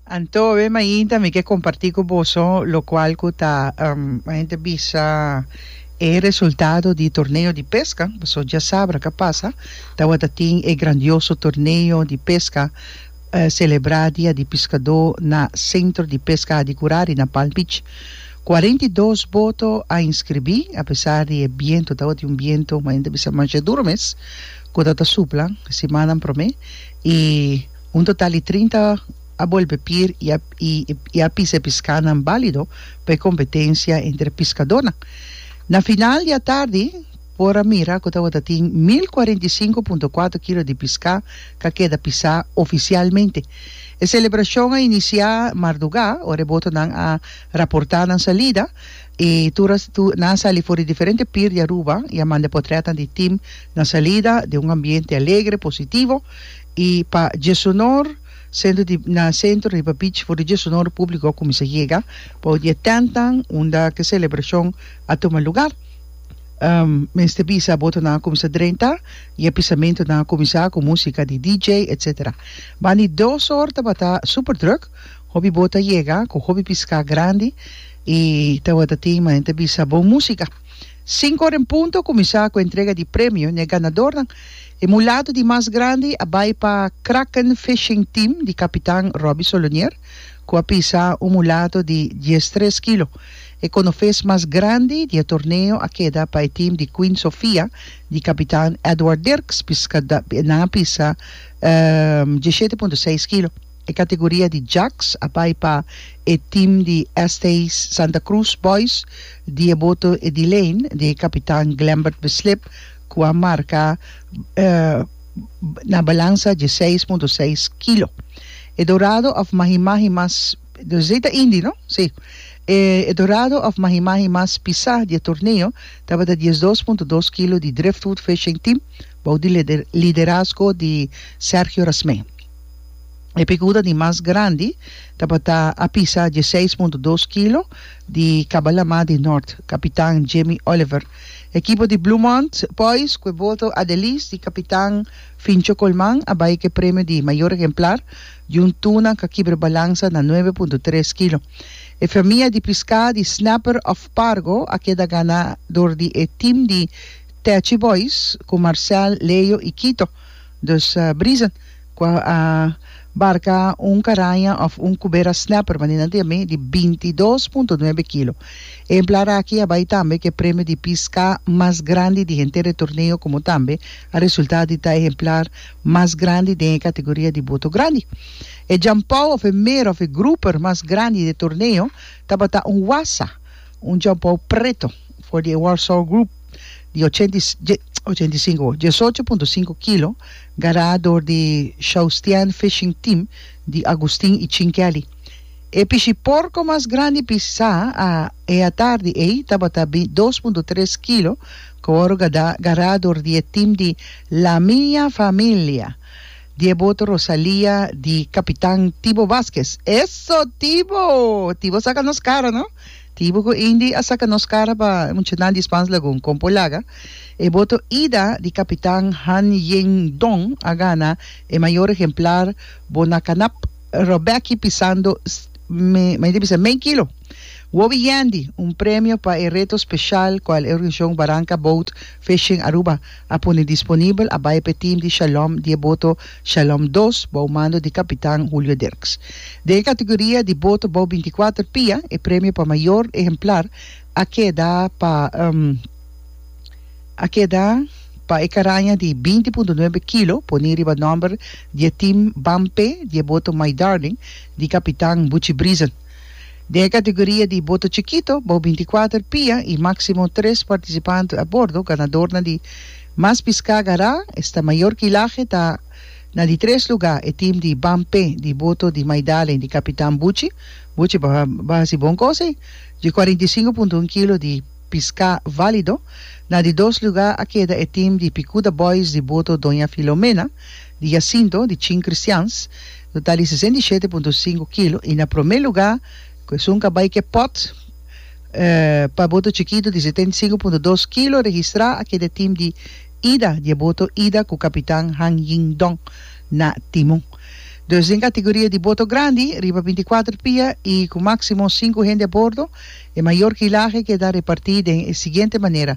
Anto awor mainta mi ke kompartí ku boso lokual ku ta men ta bisa e resultado di torneo di peska boso dja sabra ka pasa tabata tin e grandioso torneo di peska selebrá dia di piskadó na sentro di peska di Gurari na Palm Beach kuarenta i dos boto a inskribí apesar di e biento tabata un biento men ta bisa masha duru mes ku ta ta supla simannan promé i Un total di trinta a bolbe pir i a pisa e piskánan bálido pa e kompetensia entre piskadónan. Na final di atardi por a mira ku tabata tin mil kuarenta i sinku punto kuater kilo di piská ku a keda pisá ofisialmente. E selebrashon a inisiá mardugá ora e botonan a raportá nan salida i tur nan a sali for di diferente pir di Aruba i a manda potrètnan di tim na salida den un ambiente alegre, positivo. I pa dje sunor, sentro di na sentro riba beach for di dje sunor publico a cuminsa yega pa un di e tentnan unda ki e celebracion a tuma lugar. Mester bisa boto nan a cuminsa drenta y e pisamento nan a cuminsa cu musica di DJ etc. Ban di dos or tabata super druk, hopi boto a yega cu hopi pisca grandi y tabata tin manera ta bisa bon musica. Cinco or en punto a cuminsa cu entrega di premio n'e ganadornan. E mulato di mas grandi a bai pa Kraken Fishing Team di kapitan Robbie Solonier ku a pisa un mulato di diestres kilo. E konofes mas grandi di e torneo a keda pa e team di Queen Sofia di kapitan Edward Dirks, nan a pisa diesshete punto seis kilo. E kategoria di Jacks a bai pa e team di ST. Santa Cruz Boys di e boto Edilene di kapitan Glembert Beslip, cu a marca na balanza dje seis punto seis kilo. E dorado of mahi mahi mas, dezey ta Indy no? Si. E dorado of mahi mahi mas pisa di e torneo tabata dies dos punto dos kilo di Driftwood Fishing Team bou di liderazgo di Sergio Rasmee. E picuda di mas grandi tabata a pisa dje seis punto dos kilo di Cabalama di North, capitan Jamie Oliver. Ekipo di Bloemont Boys ku e boto Adelis di kapitan Fincho Colman a bai ku e premio di Mayor Ehemplar di un tuna ka kibra balansa na nuebe punto tres kilo. E famia di piská di Snapper of Pargo a keda ganador di e tim di Techi Boys ku Marcel, Leo i Kito. Dus Brisen. Cu a barca un caraña of un cubera snapper manina di ami di binti dos punto nuebe kilo. Ehemplar aki a bay tambe cu e premio di pisca mas grandi di henter e torneo como tambe a resulta di ta ehemplar mas grandi den e categoria di boto grandi. E jampou of e mera of e grouper mas grandi di e torneo tabata un wassa, un jampou preto, for di e Warsaw Group di ochenta y cinco, diesocho punto cinco kilo, Gará dor di Shaustian Fishing Team di Agustin y Chin Kelly. E pishi porco mas grandi pisá a e atardi ey tabata bin dos punto tres kilo cu wòrdu gadá gará dor di e team di La Mia Familia di e boto Rosalia di Capitan Tibo Vazquez. Eso Tibo! Tibo saca nos cara no! Tibu ku Indy a saka nos kara pa e muchanan di Spans Lagoon kompo laga, e boto Ida di kapitan Han Ying Dong a gana e mayor ehemplar bo na kanap Robecki pisando medio kilo. Wobi Yandy, un premio pa e reto speshal kual e organisacion Baranka Boat Fishing Aruba a pone disponibel a bai pa e tim di Shalom di e boto Shalom dos bou mando di kapitan Julio Dirks. Den e kategoria di boto bou binti kuater pia, e premio pa mayor ehemplar a keda pa a keda pa e karaña di binti punto nuebe kilo pone riba nòmber di e tim Bampe di e boto My Darling di kapitan Buchi Brisen. Den e kategoria di boto chikito, bou binti-kuater pia i máksimo tres partisipantu a bordo, ganadornan di Mas Piská Gará, esta mayor kilahe ta na di tres lugá, e tim di Ban Pé di boto di Maidalen di kapitan Buchi, Buchi bo bo hasi bon kos ei, dje kuarenta i sinku punto un kilo di piská válido. Na di dos lugá a keda e tim di Pikuda Boys di boto Doña Filomena. Di Jacinto, di chin cristians, lo ta di sesenta i shete punto sinku kilo, i na promé lugá ku esun ka bai ke pòt, pa e boto chikitu di setenta i sinku punto dos kilo registrá a keda e tim di ida di e boto ida ku kapitan Han Ying Dong na timun. Dus den kategoria di boto grandi, riba binti kuater pia i ku máksimo sinku hende a bordo, e mayor kilahe keda repartí den e siguiente manera,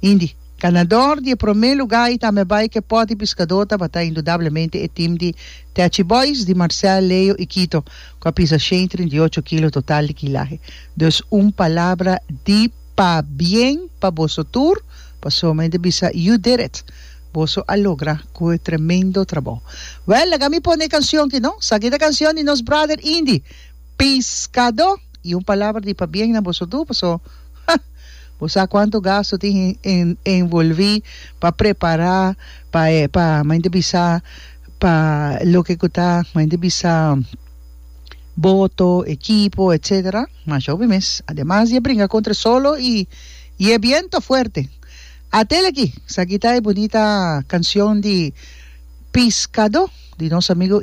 Hindi, Ganador di e promé lugá i tambe bai ke pòt di piskadó tabata indudablemente e tim di Techi Boys di Marcel, Leo i Kito ku a pisa shen i trinta i ocho kilo total di kilahe. Dus un palabra di pabien pa boso tur pasobra mi ta bisa you did it! Boso a logra ku e tremendo trabou. Wèl, laga mi pone e kansion ki no. Esaki ta kansion di nos brother Hindi. Piscado! Y un palabra di pabien na boso tur paso ha! Bo sa cuanto gasto tin en envolvi pa prepara pa e pa mainta bisa pa loke cu ta mainta bisa boto, equipo etcetera ma show mi mes ademas di a bringa contra e solo y y e biento fuerte atel aki sa kita e bunita cancion di Piscado di nos amigo.